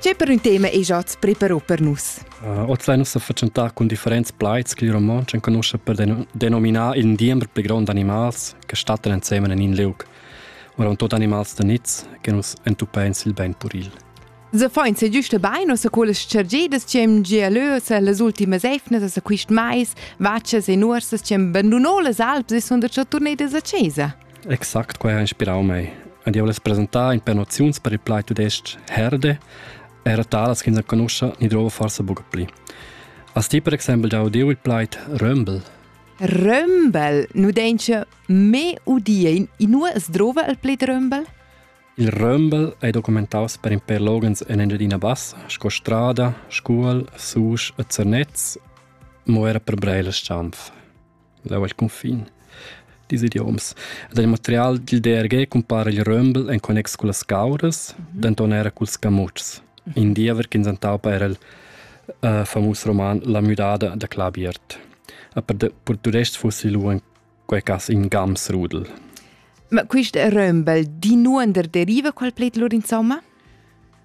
C'è per un tema e già preparò per nus? Uh, oz lai nossa facentà cun differents plaids che il romontsch enconosce per denominar il diember pli grond animals che stattan ensemen in in liug. Ora tot animals da niz che nus entupein sil ben puril. Se fain se giusta bain o se quellas chargidas che am gialös las ultimas efnas a quist mais, vaccias e nuorsas che am bandunò las alps e son da cha turnedas a chesa. Exact quai ha inspirau mei. Ed jeu less presentar in per noziuns per il plaid tudestg herde, era talas ch'ins enconuscha ni drova forsa buca pli. Has ti per exempel giau udiu il plaid römbel? Römbel nu denche me udie in inua es drova il pled römbel? Il römbel è documentaus per in per logens in Engiadina Bassa, sco Strada, Scuol, Susch e Zernez, mo era per Breiler Stampf. Leu ei cunfin dils idioms. Ed il material dil DRG cumpara il römbel en connex cullas cauras, mhm. denton era culs camutschs. In diever ch'ins entaupa era il uh, famus roman La müdada da Clabiert. A per tudest fossi lu en quei cas in Gamsrudel. Ma quist römbel di nuonder deriva qual pled lur insomma?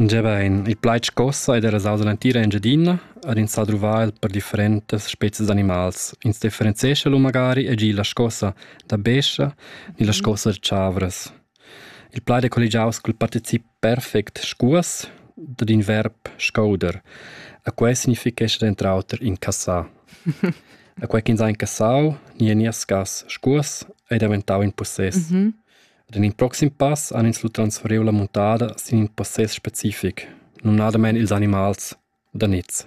Gebain, il plaid scossa ed era sauza l'entira Engiadina ad ins ha druvà el per differentas spezias d'animals. Ins differenzescha lu magari e gi la scossa da bescha ni la scossa da chavras. Il plaid è colligiaus col particip perfect scuas dad in verb scouder. A quei significhescha denter auter incassar. A quei ch'ins ha incassau ni eniascas scuas ei daventau in possess. Mm -hmm. Ed en in proxim pass han ins lu transferiu la muntada sin in possess specific, numnadamein ils animals, da niz.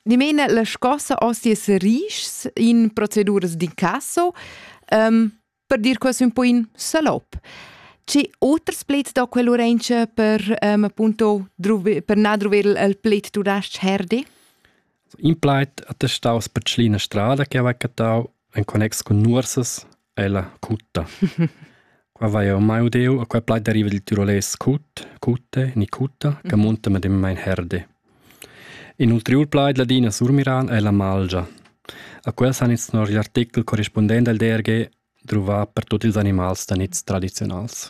Dimena la scossa ostiers rischs in proceduras d'incasso, um, per dir quasi un po in salop. C'è oters plets da quell'orengia per, um, appunto, druvi, per nadruver il plet tudasc herdi? In plait attestaus per Tschlina strada che aveva catau en connex con nuorsas Ella, cutta. Qua vai jau mai udeu a quai plaid deriva dil tirolais cut, cutte, ni cutta, che munta medemmain herde. In ulteriur plaid ladin a surmiran è la malgia. A quels han ins nor l'artikel corrispondent al DRG druvà per tutti ils animals da niz tradiziunals.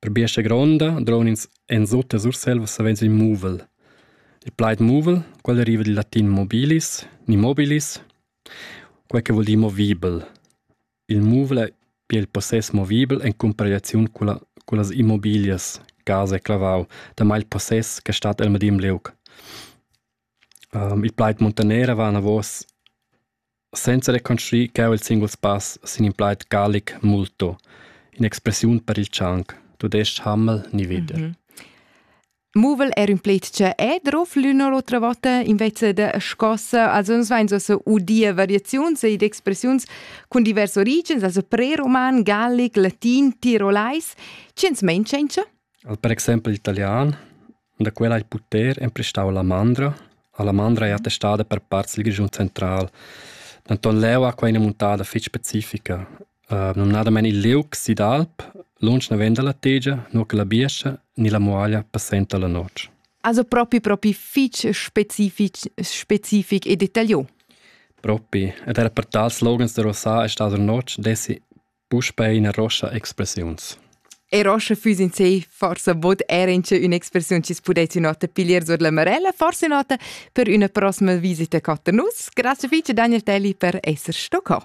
Per biestga gronda droun'ins ensutta Surselva savens il muvel. Il plaid muvel, quel deriva dil latin mobilis, ni mobilis, quei che vuol dir movibel. Il muvel è pia il possess movibel en cumparegliaziun con la, con las immobilias, casa e clavau, damai il possess che stat el medem liug. Um, il plaid montanera va anavos Senza reconstruir cheu il singul spass sin in plaid gallic multo, in'expressiun per il tschanc, tudestg Hammel ni veder. Mhm. Muvel er un pletje e drof l'una l'otra volta invece de scossa, also uns vein so se udia variaziuns ed expressiuns cun divers origens, also preroman, gallic, latin, tirolais, ci ens mein cencha? Al per exempel italian, Da quella ha il puter emprestau alla mandra. Alla mandra ei attestada per part sil Grischun central. Denton leu ha quei ina muntada fetg specifica. Uh, numnadamein il liug Sidalp, lunsch naven dalla tegia, nu che la biescha ni la muaglia passenta la notg. Also propi propi fitg specific, specific e detaglio. Propi, ed era per tals loghens de Rosà è stata la notg dessi Puspei ina roscha expressiuns. E roscha füss in se forsa bod era in che un'expressiun chi pudessi nota piglier sur la marella, forse nota per üna prossima visita cota nus. Grazie fece Daniel Telli per esser sto co.